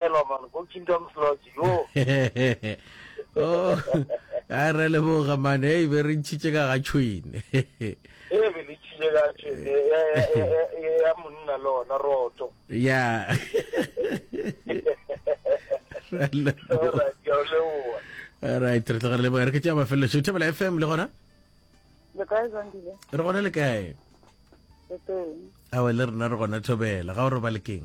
Hello man, go Kingdom's Lodge, yo. oh, a re le boga man, hey, be re ntšhitše ka ga tšhwene. Hey, be le tšhitše ka tšhwene, ya monna le ona roto. Ya. All right, re tlogele leboa re ke tša mafelelo šo thebela fm le gona le kae zandile re gona le kae awa le rena re gona thobela ga o re ba lekeng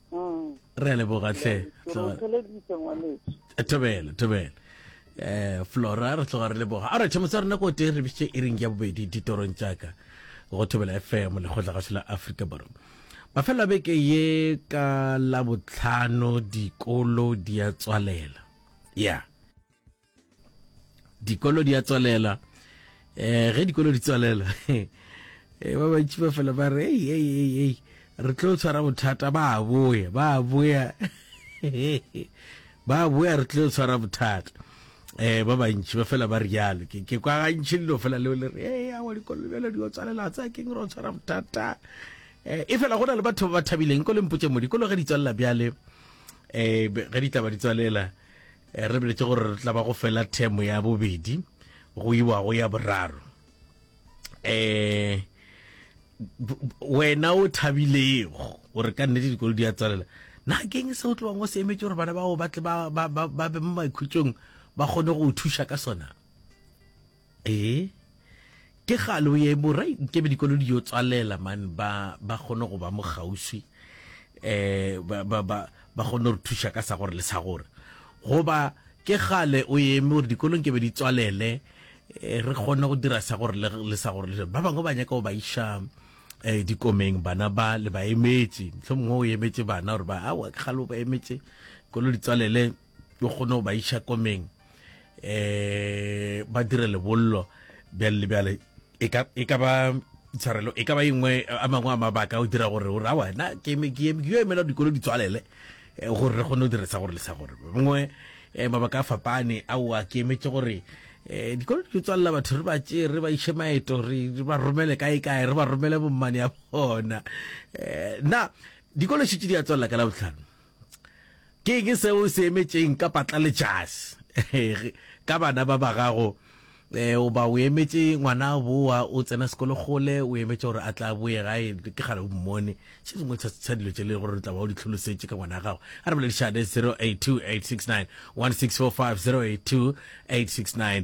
Mm. re a leboga tlhe thobele thobele um flora re tloga re leboga a retšhe motse rena ko tee re bitše e reng ya bobedi ditorong jaaka go thobela fm lekgotla gašo la aforika borwa mafelelo a beke ye ka labotlhano dikolo di a tswalela ya yeah. dikolo di a tswalela eh ge dikolo di tswalela eh, ba bantši ba fela ba re ei ei ei ei re tlo tshwara bothata ba boya ba boya ba boya re tlo tshwara bothata eh ba bantši ba fela ba rialo ke ke kwa gantši lelo fela leo le re ei a wa dikolo bjalo di tswalela tsa ke re tshwara bothata eh e fela go na le batho ba ba thabileng ko lempotse mo dikolo ge di tswalela bjale eh ge di tla ba di tswalela Eh, re biletše gore re tla ba go fela themo ya bobedi go iwa go ya boraro eh wena o thabilego gore ka nnete dikolo di a tsalela na keng se o tlowang o se emetse gore bana bao ba tle ba be mo maikhutsong ba kgone go o thuša ka sona Ee ke kgale o ye borai nkebe dikolo di yo tswalela man ba ba kgone go ba mo kgauswi eh ba ba ba ba kgone re thuša ka sa gore le sa gore goba ke kgale o ye mo gore dikolo nkebe di tswalele eh, re kgone go dira sa gore le sa gore le ba bangwe ba nyaka go ba iša eh dikomeng bana ba le ba emetše mhlomongwe o emetse bana gore ba a wa kgale o ba emetše kolo di tswalele o kgone go ba iša komeng um ba dire lebollo bjale le bjale e ka e ba tshwarelo e ka ba engwe a mangwe a mabaka o dira gore gore awa na ke yo emela dikolo di tswalele eh, gore re kgone go diresa gore le sa gore bangwe eh, mabaka a fapane ao a ke emetse gore um dikolo di tswalela batho re ba tse re ba iše maeto re ba romele kae kae re ba romele bommane ya bona um na dikolo šitse di a tswalela ka la botlhano Ke eng seo o se emetšeng ka patlaletšasi ka bana ba ba gago? Eh, o ba o emetše ngwana boa o tsena sekolo gole o emetše gore a tla boe gae ke gale o mmone se sengwe sa dilo tse le gore re tla ba o di tlholosetše ka ngwana gago a re boledišane 082 869 1645 082 869